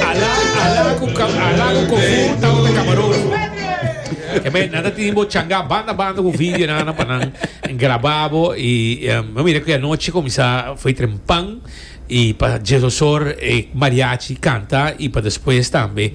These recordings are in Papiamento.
Alá, alá ku ka, alá ku kofu tabata kamarógrafo. E men nan ta tini bo changá banda banda ku video nan nan pa nan grabá bo i em, bo mira ku e anochi kuminsá foi trempan i pa Jesosor e mariachi kanta i pa despues tambe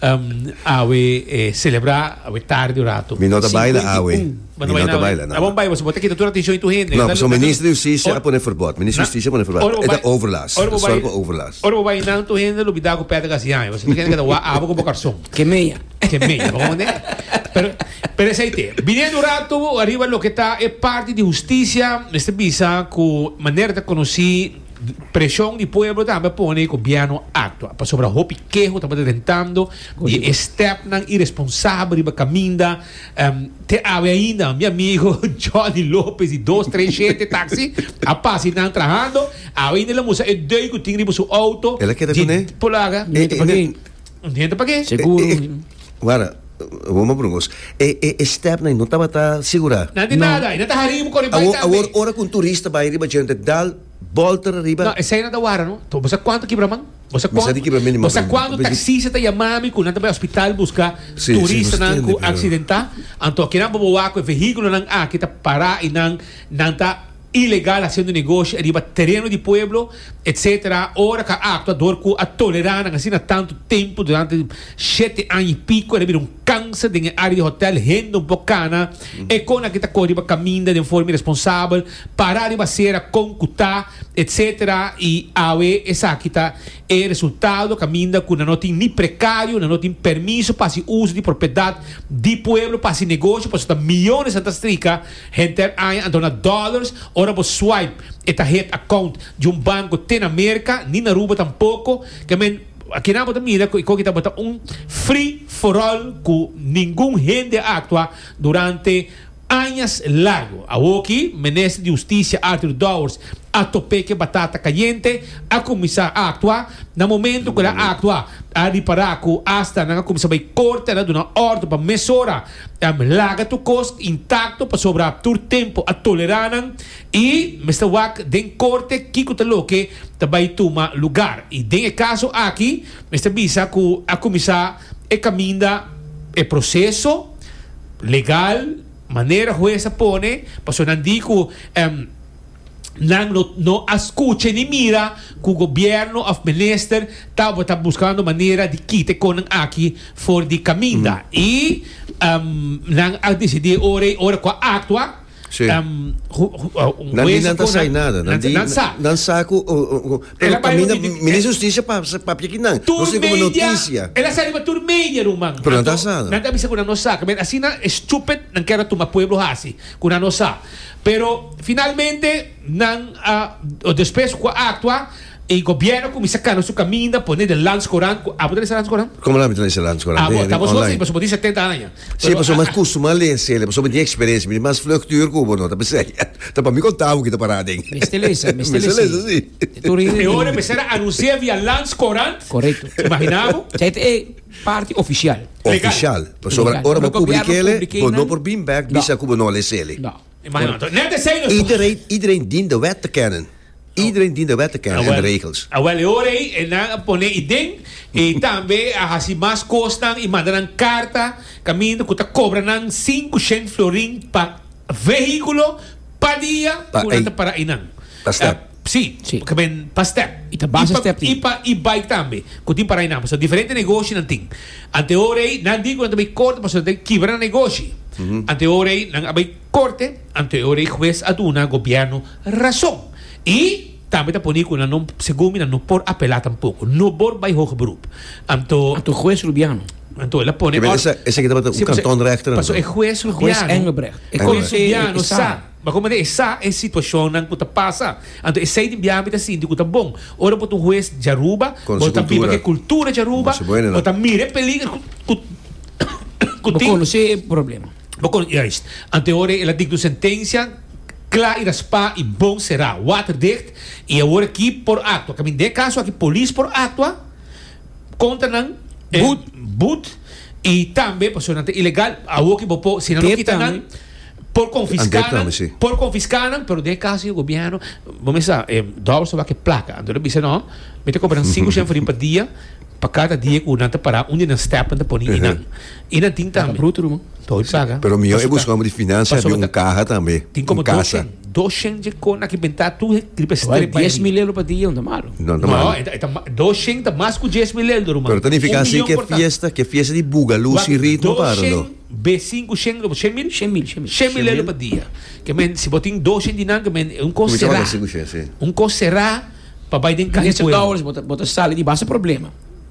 Awe e celebra awe tardi un rato. Mi no ta baila awe. Mi no ta baila na. Tabon bai boso bo ta kita tur atencion di tur hende. No pasobra Minister di Husticia a pone forbot. Minister di Husticia a pone forbot. E ta overlast. E ta sor pa overlast. Ora bo bai nan tur hende lo bida ku pèt a kasi yaña. Boso tur hende ka ta wak awe ku bo karson. Ke meña. Ke meña. Bo komprende? Pero pero esei te. Biniendo un rato ariba loke ta e parti di Husticia mester bisa ku manera ta konosí. Preshon di pueblo tambe a pone e gobièrnu aktua pasobra hopi keho tabata den tando di e stèpnan iresponsabel riba kaminda. Te awe ainda mi amigo Johnny Lopez di dos tres shente taksi a pasa i nan trahando. Awe ainda el a mustra e dui ku tin riba su outo di polaga. Un hende pa ke? Seguro. Wara, awor m'a brungo. E, e, e stepney no tabata sigurá? Na di nada, e no ta harí bo kore bai tambe. Awor, awor, ora ku un turista bai riba djente, dal bòlter ariba. No, esei no ta wara, no. Bo sa kuantu kibra man? Bo sa kuantu? Mi sa di kibra mi anima. Bo sa kuantu taksista ta yamá mi ku nan ta bai hospital buska turistanan ku aksidentá? Anto kinan bo bo wak ku e vehíkulonan aki ta pará i nan, nan ta. ilegal haciendo negoshi ariba tereno di pueblo etc. Ora cu a actua door cu a tolera nan asina tanto tempo durante shete aña y pico era bira un cancer den e area di hotel hende un poco cana e con aki ta coge riba caminda den forma iresponsabel para riba acera con cu ta etc. Y awe esaki ta e resultado caminda cu nan no tin ni precario nan no tin permiso pa haci uso di propiedad di pueblo pa haci negoshi pasobra ta millones nan ta strica Henter e aña a dona dollars ora bo swipe. E ta het account di un banco te na Merca ni na Aruba tampoco. Ke men, akinan bo ta mira cu e koki ta bota un free for all cu ningun hende a actua durante añas largo. Awoki, Minister di Husticia Arthur Dowers a tope ke batata cayente, a cuminsa actua. Na momento cu el a actua, a ripara cu hasta nan a cuminsa bay corte en a duna ordo pa mesora. Em laga tur kos intakto pasobra tur tempu a tolerá nan i mester wak den korte kiko ta loke ta bai tuma lugar. I den e kaso aki mester bisa ku a kuminsá e kaminda, e proseso legal, manera hues a pone, pasobra nan di ku em. nan no no a skucha ni mira ku gobièrnu òf minister tabata buskando manera di kita e konan aki for di kaminda i nan a desidí ora i ora ku a aktua un hues a konan nan sa nan sa ku pero kaminda minister di hustisia papia ki nan nos tin kome notisia el a sa riba tur media ruman anto nan ta bisa ku nan no sa asina e stupid nan kèr a tuma pueblo hasi ku nan no sa. Pero finalmente nan a despues ku a aktua e gobièrnu a kuminsá kana su kaminda pone den Landskoerant ku abo ta lesa Landskoerant? Komo nan a bin ta lesa Landskoerant? Abo, den ta abo su online? así pasobra bo tin setenta aña. Sí, pero pasobra mi a kustumá lese el, pasobra mi tin eksperensia, mi tin mas vlugtuur ku bo, no ta miseria. Ta pa mi kontabo ki ta pará den. Mester lesa, mester Mester lesa, lesa, sí. E tur e. E ora mester a anunsiá via Landskoerant? Korekto. Imaginá bo? Cha e ta e Parti ofisial. Ofisial. Pasobra ora bo publikele, bo no por bin bèk bisa ku bo no a lesé li. I de rei, iedereen dien de wet te kennen. Iedereen dien de wet te kennen en de regels. Awèl, e ora ei e nan a pone i den i tambe a hasi mas kosnan i manda nan karta kaminda ku ta kobra nan sinku shènt florin pa vehíkulo pa dia ku nan ta para einan. Ta stèp. Sí, porque men pa step. Y ta base step tin. Y pa e-bike tambe, cu tin para Ainambo. So diferente negoshinan tin. Antehoor ey, nan di cu nan ta bay corte pasobra nan ta kibra nan negoshi. Antehoor ey, nan a bay corte, antehoor ey huez a duna gobierno razon. Y tambe ta poni cu nan no, segun mi, nan no por apela tampoco. No bor bay hoge beroep. Anto. Anto huez Rubiano. Anto el a pone. Esa, esa ki tabata un kantonrechter anto. Paso e huez Rubiano. Huez Engelbrecht. E huez Rubiano sa. Ma como ta esa e situacionnan cu ta pasa? Anto esey di biaha mi ta sinti cu ta bon. Ora bo ta un hues djaruba, bo ta biba cu e cultura djaruba, bo ta mira e peliger cu tin. Bo conoce e problema. Bo conoce, juist. Anto e ora el a dicta un sentencia cla y raspa y bon cera, waterdicht, y awor aki por actua. Caminda den e caso aki polis por actua contra nan, boet, y tambe pasobra nan ta ilegal, awor ki bo por, si nan no kita nan, Por confisca nan, por confisca nan, pero den e caso di gobierno, bo mester sa, e dòbel so wak e placa. Anto nan bisa, No, mi ta compra nan cinco shen farin pa dia, pa cada dia cu nan ta para un di nan step nan ta pone i nan. I nan tin tambe. Bruto ruman. Too e placa. Pero miyo e busca hombri di financia abi un caha tambe, un casa. Tin como dos shen, dos shen dje con aki benta tur e riba e strepa e riba. Dies mil euro pa dia no ta malo. No, no ta malo. No, e ta ma, dos shen ta mas cu dies mil eldo ruman. Pero ta nifica asi ke fiesta, ke fiesta di buga, luz i ritmo para nan. Be sinku shen loba shen mil? Shen mil, shen mil. Shen mil loba dia. Ke men si bo tin dos shen di nan ke men un kos será. Un kos será pa bai den kahe pueblo. Mester dobles bo ta sali di basta problema.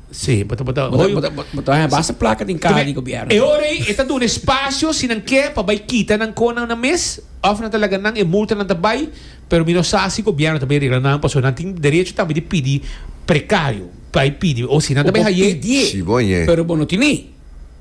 Sí, bo ta bo ta hoyo. Bo ta haña basta plaka den kaha di gobièrnu. E ora ei e ta duna espacio si nan ke pa bai kita nan konan nan mes of nan ta laga nan e multa nan ta bai pero mi no sa si gobièrnu ta bai regla nan paso nan tin derecho tambe di pidi precario bai pidi o si nan ta bai haye. Bo pidi pero bo no tene.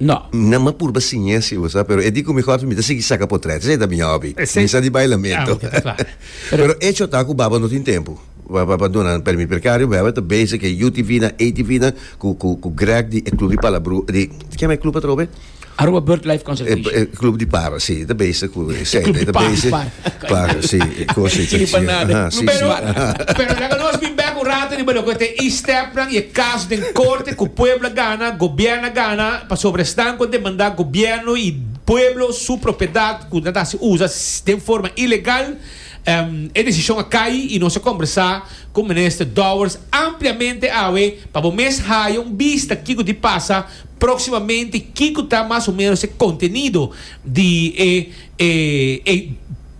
No. Nan m'a purba siña si bo sa, pero e di ku mi kòrda mi ta sigui saka potrèt. Esei ta mi hòbi. Mi sa di bailamento. Pero echo ta ku Baba no tin tempu pa duna nan pèrmit per Kario Bèber ta bezi ku e UTV nan, ATV nan, ku Grèg di e klub di Palabru, di kieme e klub atrobe? Aruba Birdlife Conservation. E klub di para, si. Ta bezi ku esei. E klub di para. Claro, si, e cos e Sirbi pa trachea. nada. Aha, si, Pero, si, aha. pero laga nos bin bek un rato riba loke ta e stepnan y e caso den corte cu pueblo a gana, gobierno a gana, pasobra esnan cu a demanda gobierno y pueblo su propiedad cu nan ta haci usa den forma ilegal, em, e decision a cay y nos a combersa cu Minister Dowers ampliamente awe pa bo mes haya un bista kico di pasa proximamente y kico ta mas o menos e contenido di e E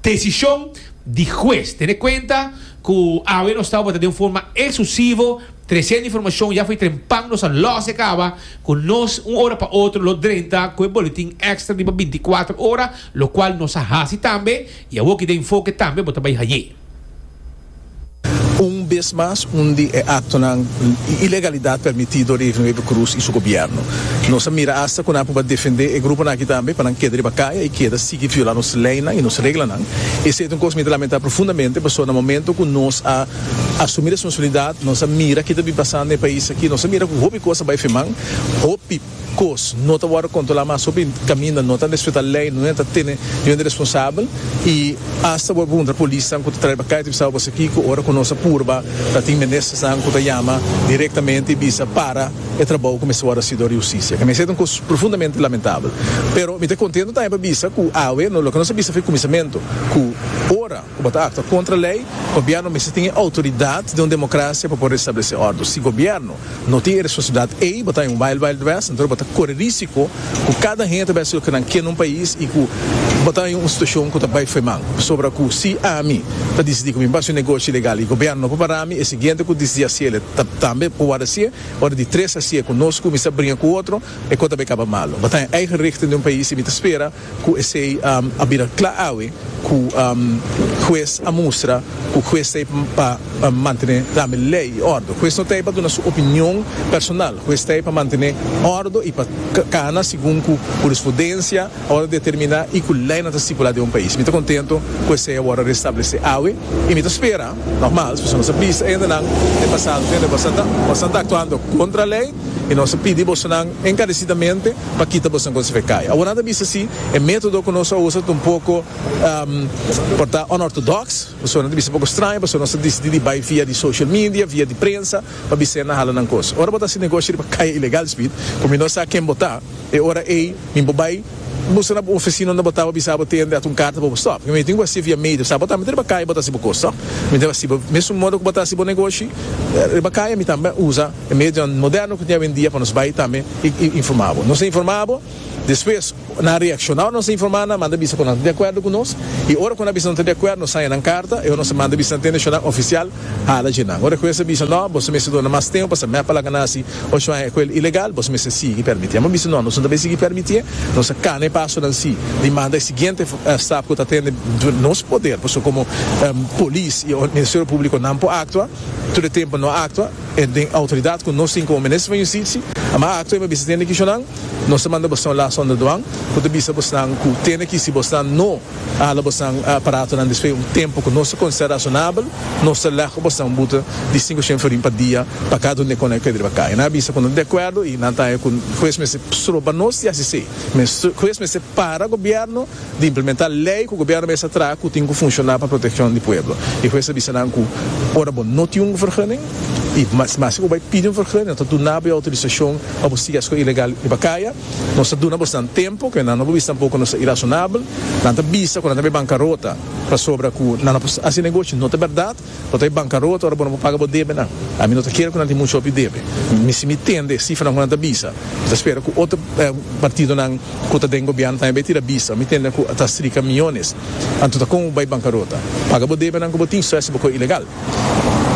desishon di hues tene kuenta ku awe nos ta operá den un forma eksklusivo, tresenta informashon ya for di tren pan nos a lòs e kaba ku nos un ora pa otro lo drenta ku e boletin èkstra riba binti kuater ora, lokual nos a hasi tambe i awoki den Enfoke tambe bo ta bai hañ'é. Un bes mas un di e aktonan i ilegalidat permití dor di Efren Wever Croes i su gobièrnu. Nos a mira asta ku nan por ba defendé e gruponan aki tambe pa nan keda riba kaya i keda sigui viola nos leinan i nos reglanan. Esei ta un kos mi ta lamentá profundamente pasobra na momento ku nos a asumí responsabilidat, nos a mira kita bin pasando na e pais aki, nos a mira ku hopi kos a bai firmá, hopi. Kos no ta wòrdu kontrolá mas hopi kaminda no ta respetá lei, no ta tene nivel di responsabel i asta bo a pregunta polisnan ku ta traiba kai ta bisaba bo esakiko ora ku nos a purba ta tin ministersnan ku ta yama direktamente i bisa para e trabou ku mester wòrdu hasi dor di hustisia. Kende esei ta un kos profundamente lamentabel. Pero mi ta kontento tambe pa bisa ku awe loke nos a bisa fin e kuminsamentu ku ora. Cu bo ta actua contra ley, gobierno mester tin e autoridad den un democracia pa por restablece ordo. Si gobierno no tin e responsabilidad ey, bo ta en un wild wild west, entonces bo ta core risico cu cada hende ta bes loke nan kier na un pais y cu bo ta en un situacion cu ta bay foe man. Pasobra cu si ami ta dicidi cu mi basi un negoshi ilegal y gobierno no por parami, e siguiente cu dicidi haciele ta tambe por worde hacie. Ora di tres hacie cu nos cu mi sa bringa cu otro, e cos ta bay caba malo. Bo ta en eigen richting den un pais y mi ta spera. Ku esei a bira kla awe ku hues a mustra ku hues ta ahí pa mantene tambe lei i ordo. Hues no ta ahí pa duna su opinion personal, hues ta ahí pa mantene ordo i pa kana segun ku hurisprudensia a wòrdu determiná i ku leinan ta stipulá den un pais. Mi ta kontento ku esei a wòrdu restablesé awe i mi ta spera, normal, pasobra nos a bisa hende nan den pasado ku hende ku a sa ta aktuando kontra lei. I nos ta pidi bosonan enkaresidamente pa kita boso den Consejo Kaya. Awor nan ta bisa si e metodo ku nos a usa ta un poko, por ta onortodoks, pasobra nan ta bisa poko straño pasobra nos a disidi di bai via di social media, via di prensa pa bisa nan hala nan kos. Ora bo ta hasi negoshi riba kaya ilegal, Speed, ku mi no sa ken bo ta, e ora ei mi por bai buska na bo ofesina unda bo ta pa bisa bo tende hasi un karta pa bo stòp. Pasobra mi tin ku hasi via media. Sa bo tambe ta riba kaya bo ta hasi bo kos, to? Mi tin hasi bo mesun modo ku bo ta hasi bo negoshi riba kaya, mi tambe a usa. E medianan moderno ku tin awendia pa nos bai tambe i informá bo. Nos a informá bo, despues nan a reakshona ora nos a informá nan, manda bisa ku nan ta di akuerdo ku nos, i ora ku nan a bisa ku nan ta di akuerdo nos saña nan karta, i ora nos a manda bisa nan tende shon nan ofisial hala dje nan. Ora ku esa bisa no, boso mester duna mas tempu pasobra mep a laga nan si ocho aña ku el ilegal, boso mester sigui permitié. Amo bisa no, nos no ta bai sigui permitié, nos a kana e pasonan si di manda e siguiente stap ku ta tende duna nos poder, pasobra komo polis i Ministerio Públiko nan por aktua tur e tempu no a aktua. E den outoridat ku nos tin komo Minister van Yustisi, a m'a akto e m'a bisa tende kishon nan, nos ta manda bosnan la Sonda Duan ku ta bisa bosnan ku tende ki si bosnan no a hala bosnan aparatonan despues un tempu ku nos ta konsera rasonabel, nos ta lègu bosnan buta di sinku shen florin pa dia pa kada un den kon nan pedriba kai. Nan a bisa ku nan ta di akuerdo i nan ta haña ku hues mester stroba nos di hasi esei. Hues mester para Gobièrnu. di implementá lei ku gobièrnu mester traha ku tin ku funshoná pa protekshon di pueblo. E hues a bisa nan ku ora bo no tin un vergunning i mas si bo bai pidi un vergunning nan ta duna bo e outorisashon pa bo sigui esko ilegal riba kaya. Nos ta duna bosnan tempu ku nan no por bisa tampoko nos ta irasonabel. Nan ta bisa ku nan ta bai bankarota pasobra ku nan no por hasi negoshi, no ta bèrdat. Bo ta e bankarota ora bo no por paga bo debenan. Ami no ta kere ku nan tin muchu hopi debe. Mi si mi tende e sifranan ku nan ta bisa, mi ta spera ku otro partidonan ku ta den gobièrnu tambe bai tira bisa. Mi tende ku ta strika miyones. Anto ta kon bo bai bankarota? Paga bo debenan ku bo tin, so es bo kos ilegal.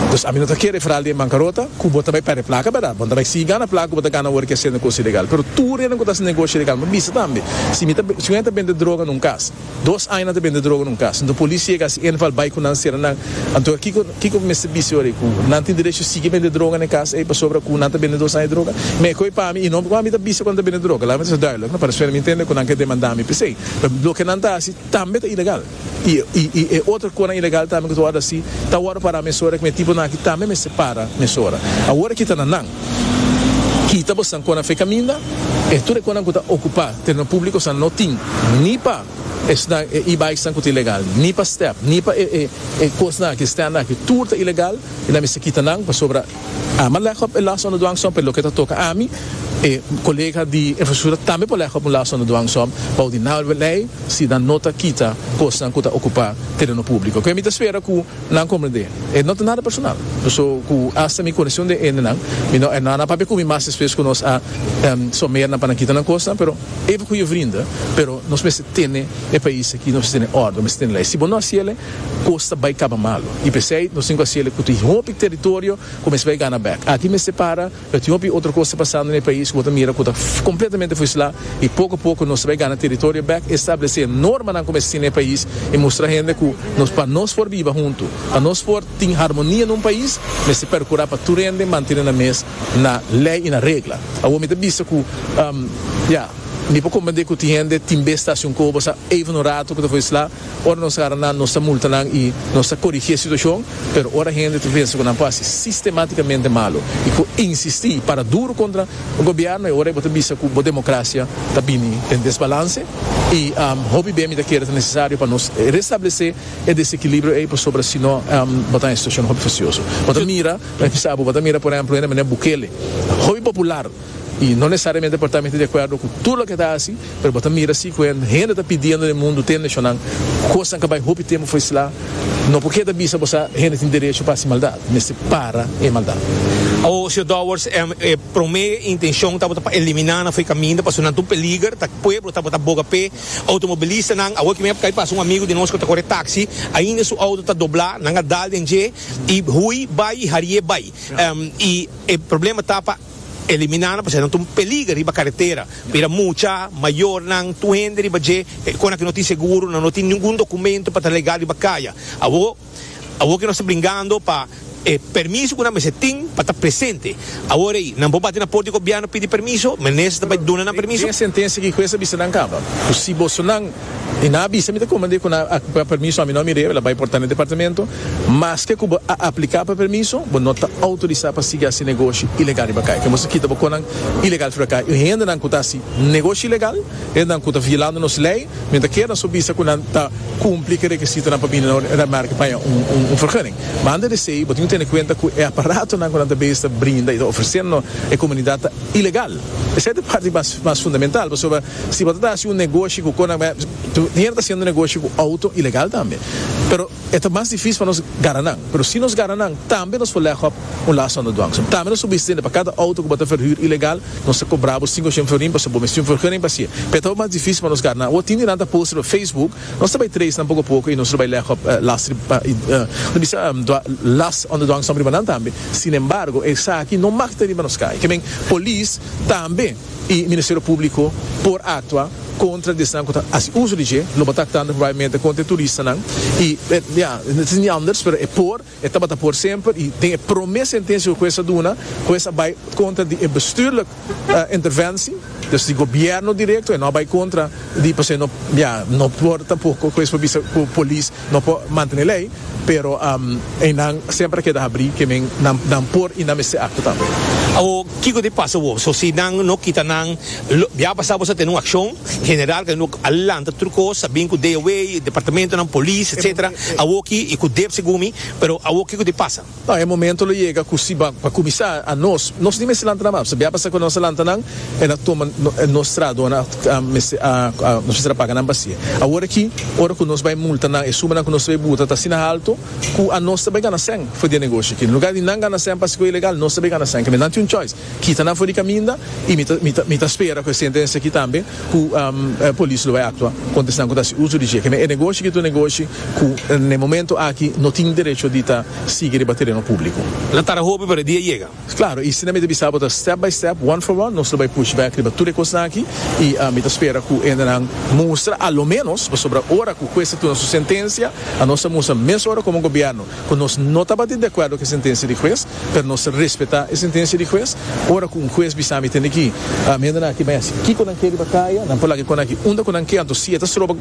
Dus ami no ta kere e feral di e bankarota ku bo ta bai pèrdè plaka, bèrdat? Bo no ta bai sigui gana plaka ku bo ta gana ora ke hasiendo kos ilegal. Pero tur e nan ku ta hasi negoshi ilegal, mi bisa tambe, si mi ta, si un hende ta bende droga na un kas, Dos aña nan ta bende droga na un kas. Anto polis yega si en val bai ku nan sera nan. Anto kiko kiko bo mester bis'e ora ei ku nan tin derecho sigui bende droga na e kas ei pasobra ku nan ta bende dos aña droga? Mi e koi pa mi i no kua mi ta bisa ku nan ta bende droga. Laga mi ta ser duidelijk no para suene mi ntende ku nan ke demanda mi p'esei. Loke nan ta hasi tambe ta ilegal i i e otro konan ilegal tambe ku ta wòrdu hasi ta wòrdu para mesora ku mi e tiponan aki tambe mester para mesora. Awor aki ta na nan. Kita bosan konan fe kaminda. E tur e konan ku ta okupá tereno públiko san no tin ni pa esnan e e-bikesnan ku ta ilegal, ni pa step, ni pa e kosnan aki, e stènt aki. Tur ta ilegal i nan mester kita nan pasobra a m'a lègop e last underduan so, pero loke ta toka ami, e kolega di infrastruktura tambe por lègop un last underduan so bou di nau lei si nan no ta kita kosnan ku ta okupá tereno públiko. Ku e mi ta spera ku. Nan comprende. E no ta nada personal. So cu hasta mi conesion den hendenan, mi no e nana papia cu mi mas despues cu nos a someer nan pa nan kita nan cosnan, pero even cu e vrienden, pero nos mester tene e pais aki, nos mester tene orde, nos mester tene ley. Si bo no haci el'e, cos ta bay caba malo. Y p'esey nos tin cu haci el'e cu tin hopi territorio cu mester bay gana bek. Aki mester para. But hopi otro cos ta pasando na e pais cu bo ta mira cu ta completamente for isla y poco a poco nos ta bay gana territorio back, establece normanan cu mester tin na e pais y mustra hende cu nos pa nos for biba hunto, pa nos for tin harmonia na un pais mester percura pa tur hende mantene nan mes na ley y na regla. Awor mi ta bisa cu ya mi por comprende cu tin hende tin bes ta haci un cobo sa even un rato cu ta for isla. Ora nos gara nan, nos ta multa nan i nos ta korigí e situashon, pero ora hende ta pensa ku nan por hasi sistemátikamente malu i por insistí i para duru kontra gobièrnu, e ora ei bo ta bisa ku bo demokrasia ta bini den desbalanse i hopi bia mi ta kere ta nesesario pa nos restablesé e desekilibrio ei pasobra si no bo ta na e situashon hopi fasioso. Bo ta mira, bo ta mira por ehèmpel hende manera Bukele, hopi popular. I no nesesariamente por ta mete di akuerdo ku tur loke e ta hasi, pero bo ta mira si ku hende ta pidiendo den mundu, den nashonnan, kosnan ku bai hopi tempu for islá, no por keda bisa bo sa hende tin derecho pa hasi maldat. Mester para e maldat. Awo, señor Dowers, e promé intenshon tabata pa eliminá nan for e kaminda pasobra nan ta un peliger ta pueblo tabata boga p'e outomobilistanan. Awor ku mi a kai pasa un amigu di nos ku ta kore taksi, ainda su outo ta doblá, nan a dal den dje i hui bai i hari'é bai. I e problema ta pa. Eliminando pasobra nan ta un peliger riba karetera, bira mucha, mayornan, tur hende riba dje, e kona ku no tin seguro, nan no tin ningun dokumentu pa ta legal riba kaya. Awo, awo ke nos ta bringando pa e permiso ku nan mester tin pa ta presente. Awor ei, nan por bati na por di gobièrnu pidi permiso, Minister ta bai duna nan permiso. Den e sentensia aki, Hues a bisa nan kaba ku si bosonan y nan a bisa mi ta comande cu nan a cu ca permiso ami no ami rebe la bay por ta na departamento maske cu bo a aplica pa permiso bo no ta autoriza pa sigui haci negoshi ilegal riba cay tin bo sa kita bo conan ilegal riba cay y hendenan cu ta haci negoshi ilegal hendenan cu ta violando nos ley mi ta keda so bisa cu nan ta cumpli ki rekisitonan pa bini na un red market paña un vergunning ma antes de esey bo tin cu tene cuenta cu e aparatonan cu nan ta bes ta brinda y ta ofreceno e comunidad ta ilegal esey ta parti mas fundamental pasobra. Si bo ta hasi un negoshi ku Conamap, Tiner ta hasiendo negoshi ku outo ilegal tambe. Pero e ta mas difísil pa nos gara nan. Pero si nos gara nan, tambe nos por lègop un last on the dwang. So, tambe nos por bisa tende pa kada outo ku bo ta verhuur ilegal, nos ta kobra bo sinku ochenba florin pasobra bo mester tin un vergunning pa hasi'é. P'e ta mas difísil pa nos gara nan. Awor tin di nan ta poster pa Facebook, nos ta bai trace nan poko poko i nos lo bai lègop last di ta bisa last on the dwang sòmbra riba nan tambe. Sinembargo, esaki no mak ta riba nos kai. Ke men, polis tambe. y Ministerio Publico por actua contra di esnan cu ta haci uso di dje, lo bo ta actando probabilmente contra e turistanan y ya, no tin di anders pero e por, e tabata por semper y den e prome sentencia cu Hues a duna, Hues a bay contra di e bestuurlijk interventie, dus di Gobierno directo, e no a bay contra di pasobra e no, ya, no por tampoco cu Hues por bisa cu Polis no por mantene ley. Pero eynan semper a keda habrí ke men nan por i nan mester akto tambe. Awo, kiko ta pasa awo? So si nan no kita nan, lo biaha pasá bo sa tene un akshon general ke no a lanta tur kos, a bin ku DOW, departamentonan, polis, etsetera. Awoki i ku dep segun mi, pero awo kiko ta pasa? Nau e momento lo yega ku si pa kuminsá a nos nos ni mester lanta nan map, sabia pasa ku nos a lanta nan e na tuma nos trahadonan a mester a nos mester a paga nan pa si. Awor aki ora ku nos bai multa nan e sumanan ku nos ta bai buta ta asina haltu ku a nos ta bai gana sèn for di e negoshi aki. En lugá di nan gana sèn pasa ku e ilegal nos ta bai gana sèn kende nan tin un choice. Kita nan for di kaminda y mi ta mi ta mi ta spera cu e sentencia aki tambe cu e polis lo bay actua contra esnan cu ta haci uso di dje. Kende e negoshi aki ta un negoshi cu na e momento aki no tin derecho di ta sigui riba tereno publico. Nan tara hopi pero e dia yega. Claro, y asina mi ta bisa bo ta step by step, one for one, nos lo bay push back riba tur e cosnan aki y mi ta spera cu hende nan mustra a lo menos, pasobra ora cu hues ta tuna su sentencia, anos ta mustra mes ora como gobierno, ku nos no tabatin di akuerdo ku e sentensia di hues, pero nos ta respetá e sentensia di hues. Ora ku un hues bisa mi tende ki mi hendenan aki bai hasi kiko nan ke riba kaya, nan por laga e konnan aki unda ku nan ke, anto si e ta stroba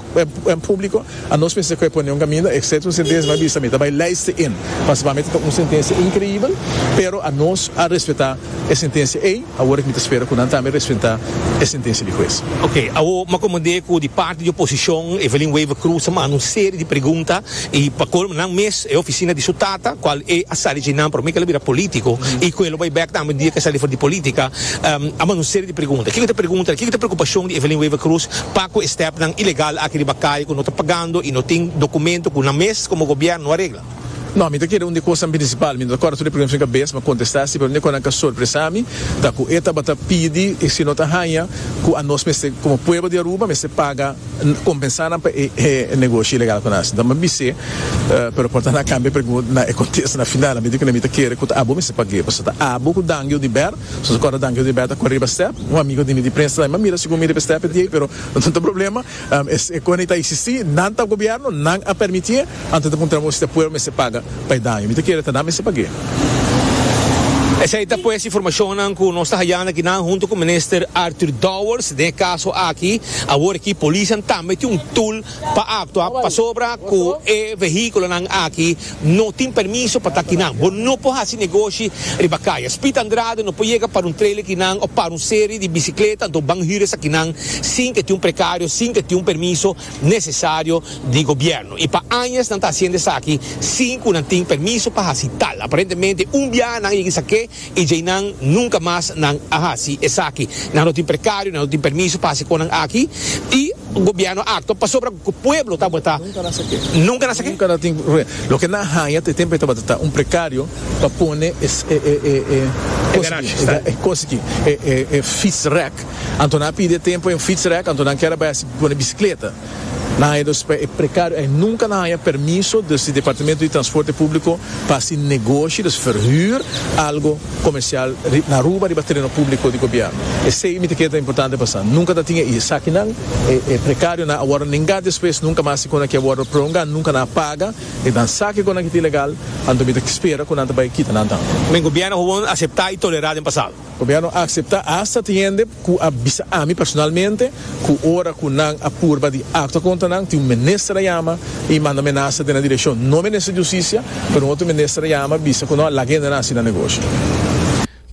en públiko, a nos pensa ku e pone un kaminda, excepto un sentensia nan bisa mi ta bai luister en. Pasabamente ta un sentensia inkreibel, pero a nos a respetá e sentensia ei, awor mi ta spera ku nan tambe respentá e sentensia di hues. Ok, awor m'akomod'é ku di parti di oposishon, Evelyn Wever-Croes ta manda un serie di pregunta I pa colmo nan mes e oficina di su tata cual e a sali dje nan prome que el a bira politico y cu el lo bay bek tambe un dia que el sali for di politica a manda un serie di pregunta kico ta pregunta kico ta preocupacion di Evelyn Wever Croes pa cu e stepnan ilegal aki riba caye cu no ta pagando y no tin documento cu nan mes como gobierno no a regla. No mi ta kere un di cosanan principal mi no ta corda tur e pregunta sino que bes mi a contesta asi pero un di e cosanan cu a sorpresa mi ta cu e tabata pidi si no ta haya cu anos mester como pueblo di Aruba mester paga Compensá nan pa e negoshi ilegal cu nan haci. Dame bis'é, pero por ta na cambia pregunta na e contesta na final. Ami di cu na mi ta kere cu ta abo mester pag'é, pasobra ta abo cu Dangio di Ber. So so acorda Dangio di Ber ta cu riba step. Un amigo di mi di prensa ta bay, ma mira si cu mi riba step e di ey, pero no ta problema. Esey cona e ta existi, nan ta gobierno, nan a permiti'é. Anto ta puntra bo si ta puer mester paga pa e daño. Mi ta kere ta nan mester pag'é. Esei ta pues informashonnan ku nos ta hayando akinan huntu ku Minister Arthur Dowers den e kaso aki. Awor aki polisnan tambe tin un tul pa aktua pasobra ku e vehíkulonan aki no tin permiso pa ta akinan. Bo no por hasi negoshi riba kaya. Speed Andrade no por yega para un trailer kinan òf para un serie di bisikleta anto banhures akinan sin ku e tin un prekario, sin ku e tin un permiso. nesesario di gobièrnu i pa añas nan ta hasiendo esaki sin ku nan tin permiso pa hasi tal. Aparentemente un biaha nan a yega esak'é i djei nan nunka mas nan a hasi esaki. Nan no tin prekario, nan no tin permiso pa hasi konan aki i gobièrnu a aktua pasobra ku pueblo tabata nunka nan sak'é. Loke nan a haña ta e tempu e tabata ta un prekario pa pone e kosa aki, e kosa aki, e fietsrek. Anto nan a pidi e tempu en fietsrek, anto nan kier a bai hasi pone bisikleta. Nan haña dos p'e precario ei nunca nan haña permiso des di Departamento di Transporte Publico pa hasi negoshi, des verhuur, algo comercial ri na Aruba riba tereno publico di Gobierno. Esey mi ta kere ta importante pa sa. Nunca ta tin e is. Sakinan, e e precarionan a wordo nengá despues, nunca mas si cu nan kier wordo prolongá, nunca nan a paga e nan saki cu nan kita ilegal, anto mi ta spera cu nan ta bai kita nan tambe. Men Gobierno gewoon aceptá i tolerá den pasado. Gobierno a acepta hasta tin hende cu a bisa ami personalmente cu ora cu nan a purba di actua contra nan tin un minister a yama y manda menasa den nan direccion, no minister di Justicia pero un otro minister a yama bisa cu no a laga hendenan asina negoshi.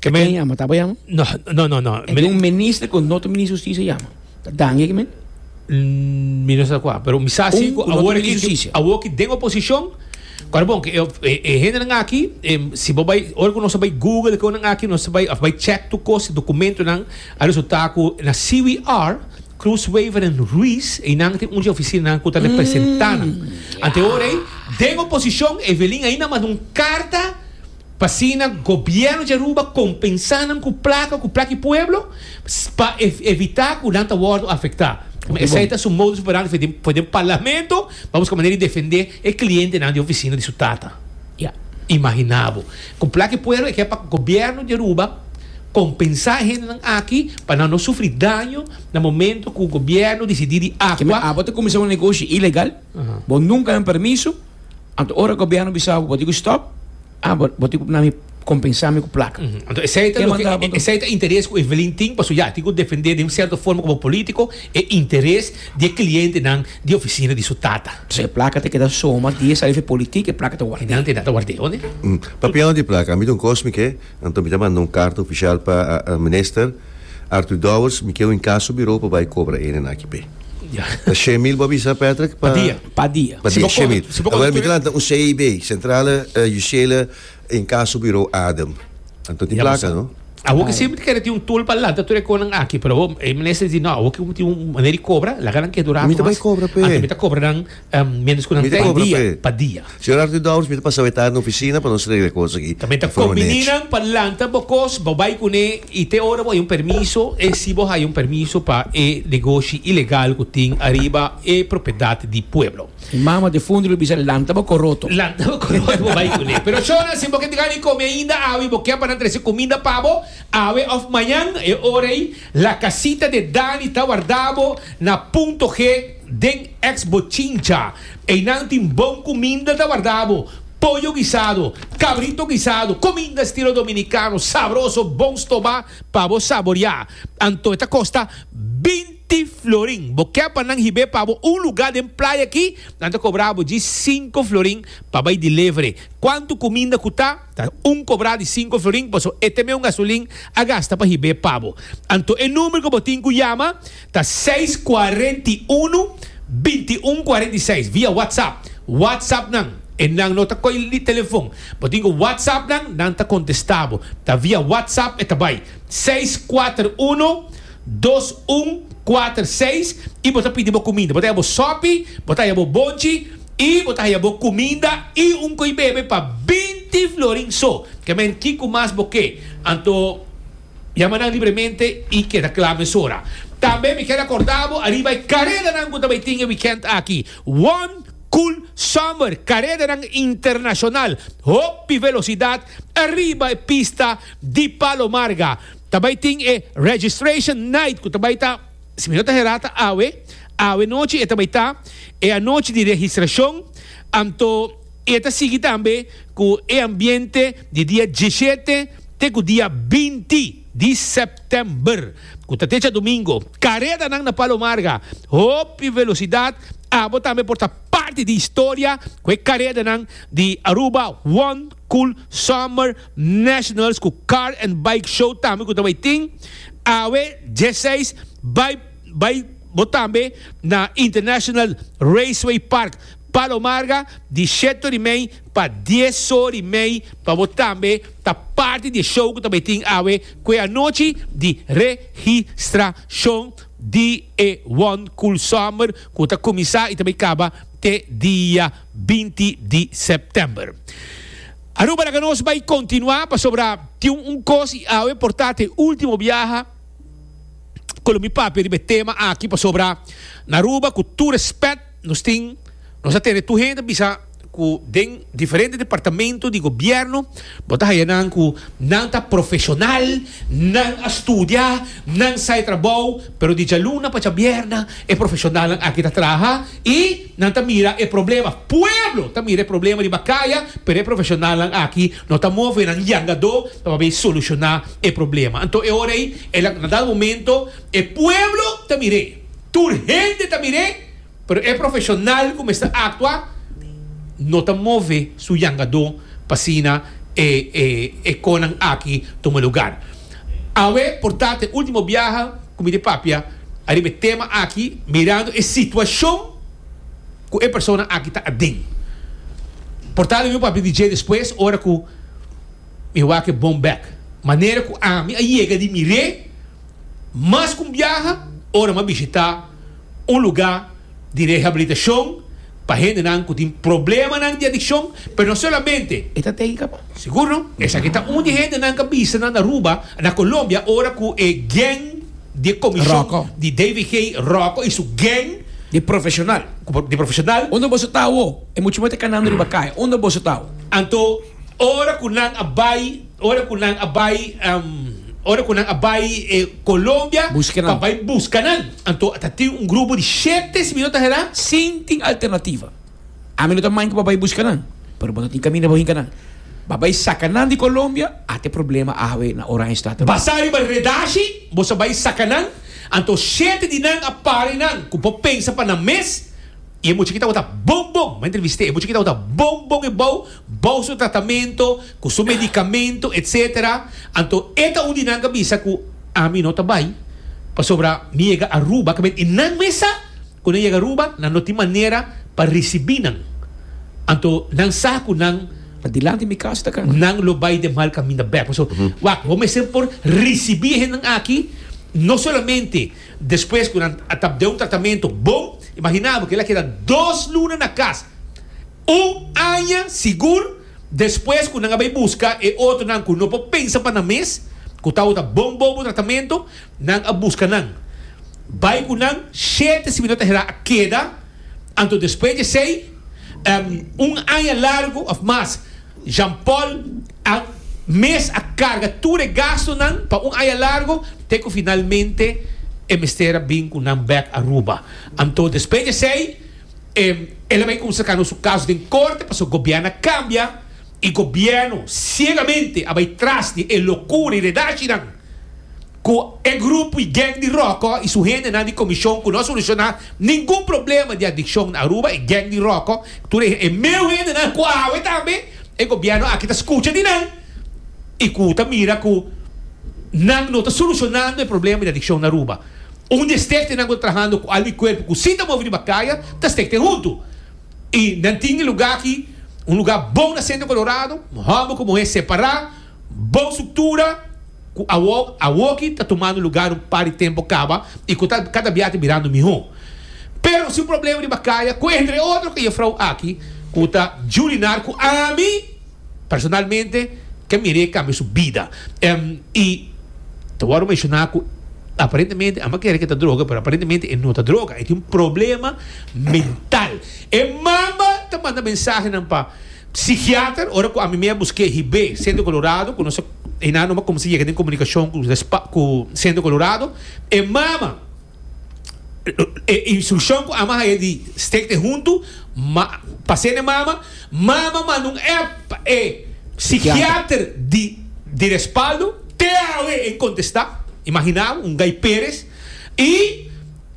Ken a yama? Tabaya? No, no, no, no. E tin un minister cu un otro minister di Justicia a yama. Ta dangi ki men? N, mi no sa kua, pero mi sa si Un ku ku no awor ta aki, mini justisia. awor ki den oposishon, kua ta bon ku e, e, e hendenan aki, em, si bo bai, ora ku nos a bai google ku nan aki, nos ta bai, a bai chèk tur kos, e dokumentonan a resultá ku na CWR, Croes, Wever en Ruiz, einan tin un di e ofisinanan ku ta representá nan. Anteora ei, den oposishon, Evelyn ainda manda un karta, P'asina gobierno di Aruba compensá nan cu placa cu plaki pueblo pa evitá cu nan ta wordo afectá. Como esey ta su modus operandi for den parlamento pa busca manera di defendé e clientenan di oficina di su tata. Ya. Imaginá bo. Cu plaki pueblo e kier pa gobierno di Aruba compensá e hendenan aki pa nan no sufri daño na momento cu gobierno dicidí di agua. Abo ta cuminsá un negoshi ilegal. Bo nunka nan permiso, anto ora gobierno bisa bo di cu stop, ah bo bo tin cu nami compensami cu placa. Anto esey ta loke esey ta interes cu Evelyn tin pasobra ya tin cu defende den un cierto forma como politico e interes di e clientenan di oficina di su tata. Pasobra e placa ta keda soma dia sali for e politiek e placa ta wardeo. Y nan ta keda ta wardeo, ne? Papiando di placa, mi ta un cos mi ke. Anto mi ta manda un karta ofishal pa Minister Arthur Dowers, mi keu in kaso birou pa bai kobra ene nan aki p'e. Ta she mil bo a bisa Patrick pa. Pa dia. Pa dia, she mil. Awor mi ta lanta un CIB, Centrale Justiele in kaso birou Adem. Anto tin plaka no? Awor ke semper ta kere tin un tool pa lanta tur e kon nan aki, pero awor e Minister di no, awor ke bo tin un maner di kobra, laga nan ke dura ato mas, anto mi ta kobra nan. Um, mientras cu nan trae dia pa dia. Señor Arthur Downs, mi ta pasa aweta na oficina pa nos regla e cos aki. Ta menta con mininan pa lanta bo cos, bo bay cune y te ora bo haya un permiso, e si bo haya un permiso pa e negoshi ilegal cu tin ariba e propiedad di pueblo. Mi mama ta fundo lo bisa lanta bo coroto. Lanta bo coroto bo bay cune. Pero shona, si bo ke tigari come ainda awe y bo ke pa nan trece comida pa bo, awe of mañan, e ora ey, La casita de Dani ta warda bo na punto G den ex Bochincha. Einan tin bon cuminda ta warda bo, pollo guisado, cabrito guisado, cuminda estilo dominicano sabroso bon stoba pa bo saboria. Anto e ta costa binti florin. Bo ke pa nan hib'e pa bo un lugar den playa aki, nan ta cobra bo djis cinco florin pa bay delivery. Cuanto cuminda cu ta. Ta un cobrá di cinco florin paso e ta meun gasolin a gasta pa hib'é pa bo. Anto e number cu bo tin cu yama ta seis cuarenta y uno, veintiuno cuarenta y seis via WhatsApp. WhatsApp nan, e nan no ta coy di telefon. Bo tin cu WhatsApp nan, nan ta contesta bo. Ta via WhatsApp e ta bay seis cuater uno. dos un kuater seis i bo ta pidi bo kuminda. Bo ta haya bo sòpi, bo ta haya bo bonchi i bo ta haya bo kuminda i un koi bebe pa binti florin so. Ke men kiko mas bo ke. Anto yama nan libremente i keda kla mesora. Tambe mi kier akorda bo ariba e karedanan ku ta bai tin e wikènt aki, One Cool Summer, karedanan internashonal hopi velosidat ariba e pista di Palo Marga. Ta bai tin e Registration Night ku ta bai ta, si mi no ta herá ta awe, awe nochi e ta bai ta, e anochi di registrashon, anto e ta sigui tambe ku e ambiente di dia diesshete te ku dia binti di sèptèmber, ku ta techa domingo. Karedanan na Palo Marga, hopi velosidat, abo tambe por ta parti di historia ku e karedanan di Aruba One. Cool Summer Nationals ku Car and Bike Show tambe ku ta bai tin awe dieseis bai bai bo tambe na International Raceway Park Palo Marga di shet-tur i mei pa dies-tur i mei pa bo tambe ta parti di e show ku ta bai tin awe ku e anochi di registrashon di e One Cool Summer ku ta kuminsá i ta bai kaba te dia binti di September. Aruba laga nos bai kontinuá pasobra tin un kos i awe por ta te último biaha ku lo mi papia riba e tema aki pasobra na Aruba ku tur respèt nos tin nos a tene tur hende ta bisa ku den diferente departamento di gobièrnu bo ta haña nan ku nan ta profeshonal nan a studia nan sa e trabou pero di djaluna pa djabièrnè e profeshonalnan aki ta traha i Nan ta mira e problema. Pueblo ta mira e problema riba kaya, pero e profesionalnan aki no ta move nan yangadó pa papia solushoná e problema. Anto e ora ei, e lak na dal momento, e pueblo ta mir'é, tur hende ta mir'é, pero e profesional ku mester aktua no ta move su yangadó pa asina e e e konan aki tuma lugar. Awe por tatat e ultimo biaha cu mi ta papia ariba e tema aki mirando e situacion cu e persona aki ta aden. Por tatat mi a papia di dje despues ora cu mi a wak e bon bek. Manera cu ami a yega di mir'e mas cu un biaha ora mi a bishita un lugar. di rehabilitashon pa hendenan ku tin problemanan di adikshon, pero no solamente. E ta tenka pa. Sigur no? Esaki ta un di hende nan ka bisa nan Aruba, na Colombia, ora ku e geng di e komishon di DVG, Rocco i su geng, Di profeshonal. Di profeshonal. Unda boso ta awo? E mucha moe ta kanando riba kai. Unda boso ta awo? Anto, ora ku nan a bai. Ora ku nan a bai, ora ku nan a bai e Colombia pa bai buska nan, anto ta tin un grupo di shete, si mi no ta herá. Si tin alternativa, ami no ta maña ku pa bai buska nan, pero bo ta tin kaminda pa bo hinka nan. Pa bai saka nan di Colombia, at e problema awe na Oranjestad tambe. Basá riba redashi, bo sa bai saka nan, anto shete di nan a pare nan ku bo pensa pa nan mes, i e mucha ki tabata bon bon, bo a entrevist'é, e mucha ki tabata bon bon ebou, bou su tratamentu, ku su medikamentu, etc. Anto e ta un di nan ku a bisa ku ami no ta bai, pasobra mi yega Aruba, ku bai e nan mes sa ku nan yega Aruba, nan no tin manera pa risibí nan. Anto nan sa ku nan. Ta dilanti mi kas ta kaba. Nan lo bai den mal kaminda bèk. Paso, wak, bo mester por risibí e hendenan aki, no solamente despues ku nan a ta den un tratamentu bon, imaginá bo, kila a keda dos luna na kas. Un aña sigur despues ku nan a bai buska e otronan ku no por pensa pa nan mes, ku tawata bon bobu tratamentu, nan a buska nan. Bai ku nan shete sibi no ta hera a keda, anto despues di esei, un aña largu òf mas, Jean-Paul a mes a karga tur e gastunan pa un aña largu te ku finalmente e mester a bin ku nan bèk Aruba. Anto despues di esei. El a bay usa cano su caso den corte pa su gobierno a cambia y gobierno ciegamente a bay tras di e locura y redacinan cu e grupo y gang di Roco y su hendenan di comision cu no a soluciona ningun problema di adiccion na Aruba, e gang di Roco tur e meu hendenan cu awe tambe e gobierno aki ta scucha di nan y cu ta mira cu nan no ta solucionando e problema di adiccion na Aruba. Un di e stektenan ku ta trahando ku algu e kuerpu ku si ta move riba kaya ta stekten huntu. I nan tin e lugá aki, un lugá bon na sentro Kolorado, hòmber ku muhé separá, bon struktura ku awo awoki ta tumando lugá un par di tempu kaba i ku ta kada bia ta birando mihó. Pero si un problema riba kaya ku entre otro ka e frou aki ku ta djurinar ku ami. Personalmente ke mir'é kambia su bida. I ta wòrdu menshoná ku aparentemente, amba kere ke ta droga, pero aparentemente e no ta droga. E tin un problema mental. E mama ta manda mensahenan pa psikiater ora ku ami mei a busk'é hib'é Sentro Kolorado, ku nos a, e nan nomba kumsa yega den komunikashon ku ku Sentro Kolorado. E mama. E instrukshon ku ama haña di stekte huntu pa ser n'e mama, mama manda un app pa e sikiater di respaldo, te awe e kontestá, imaginá un Guy Perez, i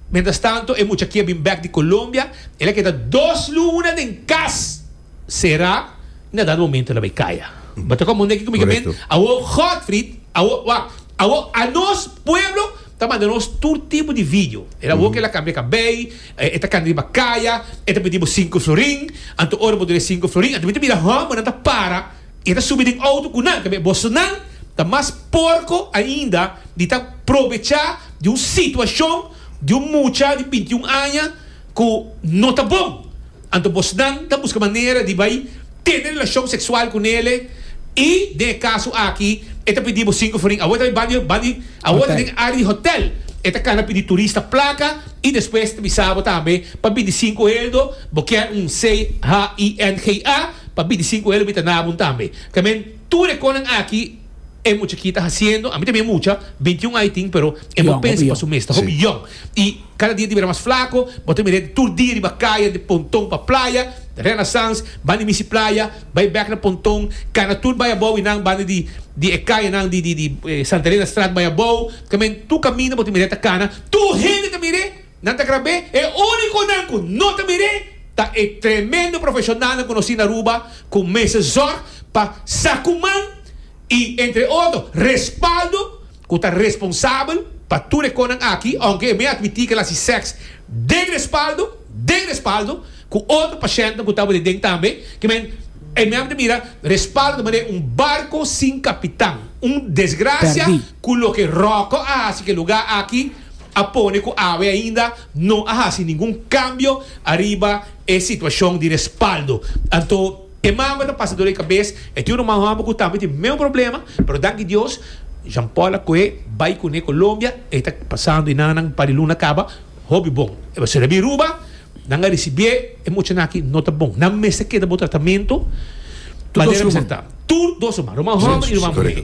mientras tanto e mucha aki a bin bèk di Colombia, el a keda dos luna den kas. Sera nada momento la bay caya. Bata con mundeki cu mi caben awo Godfried awo wak awo a nos pueblo ta manda nos tur tipo di video era awo kela cambia cabey e ta cana riba caya e ta pidi bo cinco florin anto ora bo duna e cinco florin anto mi ta mira homber nan ta para y ta subi den auto cu nan ta be boso nan ta mas porco ainda di ta probecha di un situacion di un mucha di binti un aña cu no ta bon. Anto bosnan ta buska manera di bai tene relashon seksual ku nele i den e kaso aki e ta pidi bo sinku forin. Awor e ta bai bandi bandi awor ta den área di hotèl. E ta kana pidi turista plaka i despues e ta bisa bo tambe pa bini sinku heldo bo kier un CHINGA pa bini sinku heldo bita na bo tambe. Tamen tur e konan aki. E mucha ki ta haciendo, ami también mucha, binti un ai tin pero e no pensa pa su mes, ta hopi yong. Y cada dia ta bira mas flaco, bo ta mira tur dia riba caya den pontón pa playa, Renaissance, banda misi playa, bay bek na pontón, cana tur bay abao y nan banda di e cayanan di Santa Elena straat bay abao, ta men tur caminda bo ta mira ta cana, tur hende ta mira. Nan ta grab'é. E únikonan ku no ta mir'é ta e tremendo profeshonalnan ku nos tin na Aruba ku mester zòrg pa sa ku man i entre otro respaldo ku ta responsabel pa tur e konan aki, ounke e mei admití ku el hasi sèks den respaldo, den respaldo ku otro pashèntnan ku tabata den tambe. Kimen e mei a mester mira respaldo ta manera un barko sin kapitan. Un desgrasia ku loke Ròkò a hasi ku e lugá aki. a pone cu awe ainda no a haci ningun cambio ariba e situacion di respaldo. Anto e mango ta pasa dor e cabes, e tin un ruman homber cu tambe tin mesmo problema, pero danki Dios, Jean Paul a coe bay cune Colombia, e ta pasando y nannan un par di luna caba hopi bon. E basura a bin Ruba, nan a ricibié e muchanan aki no ta bon, nan mester keda bo tratamento manera mester ta. Tur dos ruman, ruman homber y ruman muher.